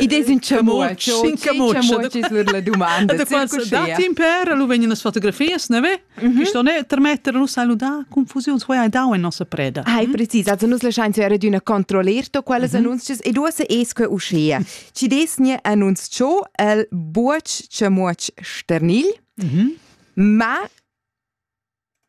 Id es ün chamuotsch, ün chamuotsch sur la dumanda. Da qual dat impera, lu vegnan las fotografias, ne ve? Sto ne termetter lu saludar confusiuns voi hai dau in nossa preda. Hai precis, also nus laschain zu era d'una controllerto quellas annunzias e duosse es que uschea. Ci desne annunz cho el buoch chamuotsch sternil, ma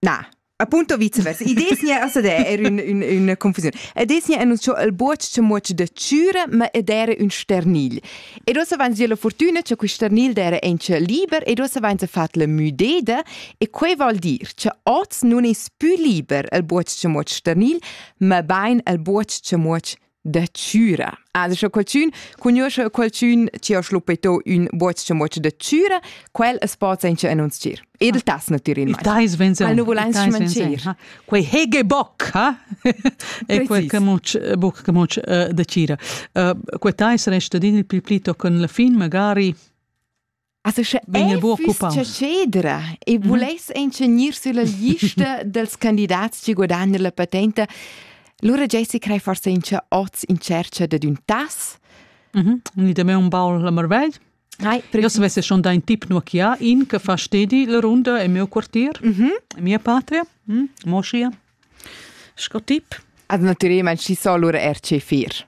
Na. Appunto viceversa. I desnia a sadè er ün, ün, üna confusiun. E desnia en uns cho il buoch che muoch da chüra, ma ed era ün sternil. Ed ossa vains via la fortuna che quist sternil d'era enche liber ed ossa vains fat la müdeda e quei vol dir che oz nun es pü liber il buoch che muoch sternil, ma bain il buoch che muoch da chüra. Adesso qualchün cugnuoscha qualchün chi ho schluppeto ün buoch-chamuotsch da chüra, quel as po sainza annunzchir. Ed il tas nu tir in mai. Il tais venza. Quel nu vulais schmancir. Quei hege boc, ha? e quel camucch, boc camucch da chira. Quei tais resta din il pli pli tochen la fin, magari Asa sche vegn el buc occupau. Cedra e vuless encenir sulla lista dels candidats che guadagnan la patenta. Lura Jessi crei forse in che oz in cerca de un tas. Mhm. Ni de me un baul la marvegl. Hai, Io se vesse schon dein tip nur chia in che fa stedi la runda e mio quartier, mhm. mia patria, mm, mo sia. Sco tip. Ad naturema ci solur RC4.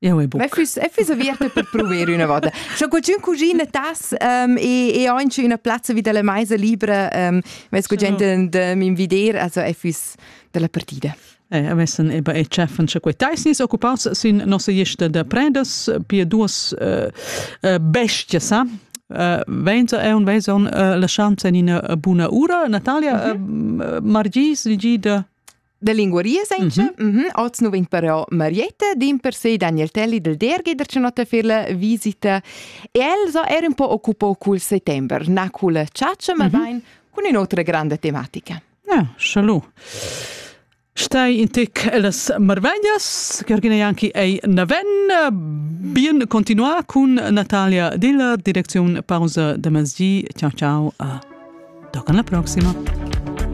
Eu e buc. Ma füss, e füss aviert per prover üna vota. Scha qualchün cugina tas ähm, e, e anche üna plazza vi dalla meisa libra, ähm, vess qualchün de m'invider, also e füss dalla partida. Eh, avessan eba e chefan sche quei teis nis occupats sin nossa lista da predas pia duas uh, uh, bestia sa Uh, venza è un veson uh, la schanza in una buna ura. Natalia, mm -hmm. uh, Margis, digida Da linguaria senza? Mm -hmm. Oz nu vegn però Marietta, din per sé Daniel Telli del Derghi der Cenotta per la visita. El sa era un po' occupò col settembre, na col ciaccia, ma mm -hmm. bain con un'altra grande tematica. Ja, salud. Stai in tic las marvegnas, Georgina Janki ei naven, bien continua con Natalia Dilla, Direction Pausa de Mezzi. Ciao ciao, a toccan la prossima.